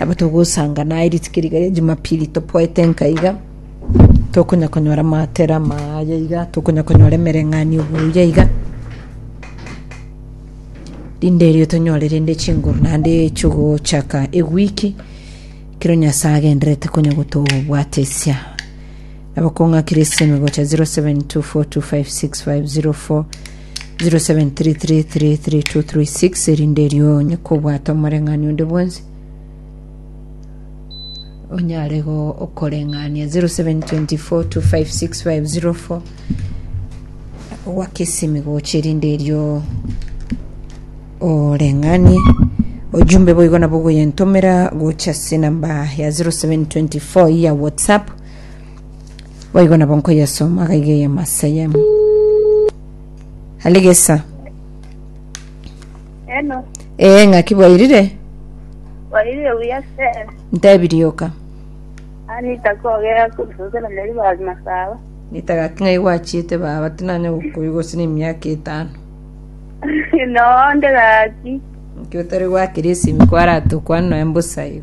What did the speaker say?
Nabo togosangana aye rituko riga ria Jumapili topoete nkaiga, tokonya konyora amatera amaya iga, tokonya konyora emereng'anio buya iga, rinde erio tonyore rende chinguru naende chigochaka ewiki ekero Nyasae agenderete konya gotobwatesia. Nabo kong'akire esime gocha 0724256504 0733333236 erinde erio onye kobwata omoreng'ani onde bwonsi onyare go okoreng'ania 0724256504 wakesimi gocha erinde erio oreng'anie ojumbe boigo nabo goyentomera gocha ase enamba ya 0724 ya whatsapp Boigo nabo nkoyesoma agaiga eyemo ase eyemo. Aligesa. Hello. Ee, ng'aki bwairire? Bwairire buya sir. Ntebirie oka. Anita kogera kusosera neri ba masaba. Nitagaki ng'ai gwachiete baba tinanya gokoyu gose na emiaka etano. no, ndegaki. Nki otari gwakire esimi kwarate okwana noe mbosayo.